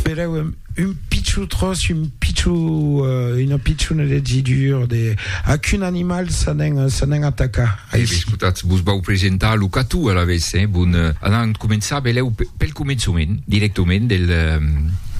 Pereu un, un pichou tros, un pichou, euh, una pichouna de didur, de... a qu'un animal ça n'en, ça n'en ataca. Eh, escoltat, vos vau presentar lo catou a la vez, eh? Bon, euh, anant començar beleu pel començament, directament del... Euh,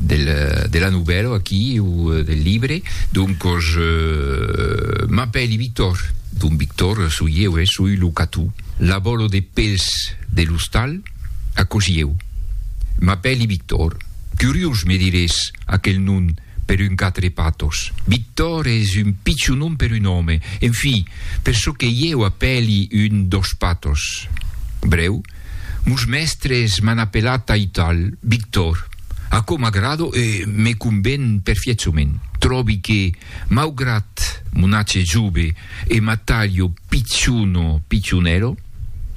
del, euh, de la nouvelle aquí ou euh, del livre donc je m'appelle Victor donc Victor soyez ouais, soy le catou l'abolo des pels de l'hostal Aquò sieu. M'apèli Victor. Curiós me dirés aquel nom per un quatre patos. Victor es un pichon nom per un òme, en fi, per çò que ieu apèli un dos patos. Brèu, mos mèstres m'an apelat aital, Victor. Aquò m'agrada e me conven perfièchament. Tròbi que. Maugrat mo nace jove e m'atalho piciono picionero,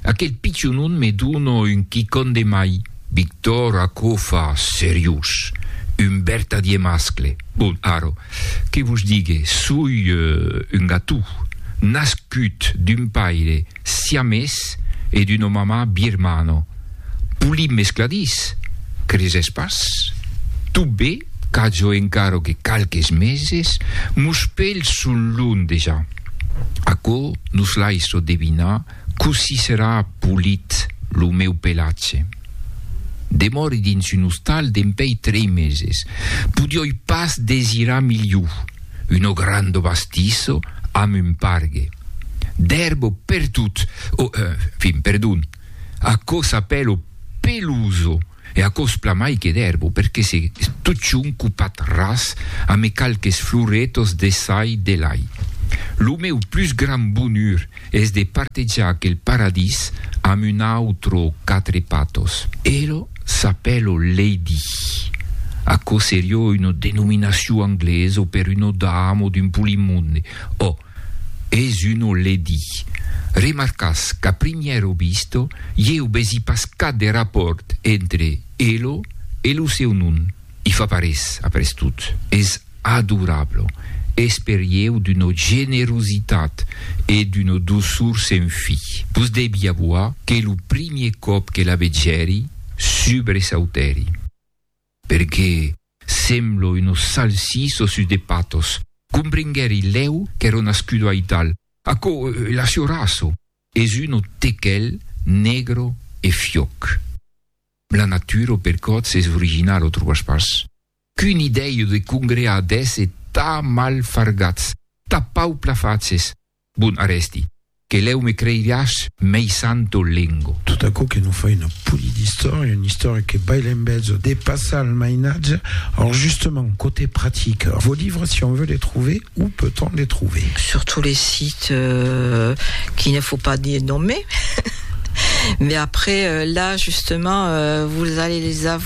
aquel picionon me dona un quicon de mai. Victor, aquò fa seriós. Un bertadier mascle. Bon, ara, que vos digue, soi un gatou, nascut d'un paire. siamés e d'una mamà birmana, polip mescladís, cresés pas? Tot be qu'ajo encara que qualques meses, mos pèls son long dejà. Aquò nos laissa devinar cossí serà polit lo meu pelatge. Demòri dins un ostal dempèi trei meses, podioi pas desirar milhor. uno grando bastisso amb un pargue d'erbo pertot, o fin, perdon, aquò s'apèlo peloso e aquò es plamai que d'erbo perque se totjorn copat ras ame qualques floretos de çai de lai. Lo meu plus grand bonur es de partejar aquel paradís amb un autre quatre patos. Elo s'apèlo Lady. Aquò serió una denominacion anglesa per una dama o d'un polimonde. Ò, es una Lady. Remarcas qu'a primièra vista, ieu vesi pas cap de rapòrt entre elo e lo seu nom. I fa pas res, après tot. Es Adorable! Esperieu d'una generositat e d'una doçor sen fi. Vos devi avoar que lo primier còp que la vegèri, subresautèri. Perque sembla una salsissa sus de patas. Comprenguèri lèu qu'èra nascuda aital. Aquò, la siorassa, es una tequel negra e fiòc. La natura, per còts, es originala, trobas pas? Qu'un idèiu de congrear d'èsse tà mal fargats, tà pauplafatges! Bon, arrèsti, que lèu me creiriàs mei santo lengo. Tot aquò que non fai una puni d'istòria, una istòria que baila en bezo, depassa al mainatge. Or, justement, cote pratica, vos livres, si on veut les trouver, où peut-on les trouver? Sur tous les sites qu'il ne faut pas nommer. Mais après, là, justement, vous allez les avoir.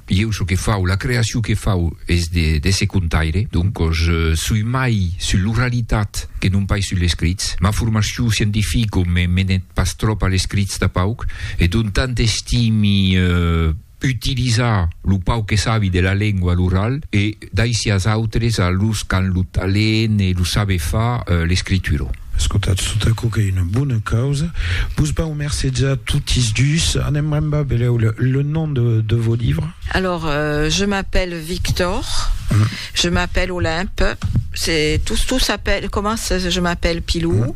Ieu çò que fau, la creacion que fau es de ce contaire, doncos soi mai sus l'oralitat que non pas sus l'escrits. Ma formacion scientifica me menet pas tròp a l'escrits tà pauc, e donc tant estimi utilizar lo pauc que sabi de la lengua a l'oral e, Daisias autres a los qu'an lo talent e lo saber far, l'escritura. Escotatz tot aquò qu'ei una bona causa. Vos vau mercejar totis dus. Anem rembar, belèu, le nom de vos livres. Alors, je m'appelle Victor, je m'appelle Olympe, c'est, tous, tous s'appellent, commencent, je m'appelle Pilou.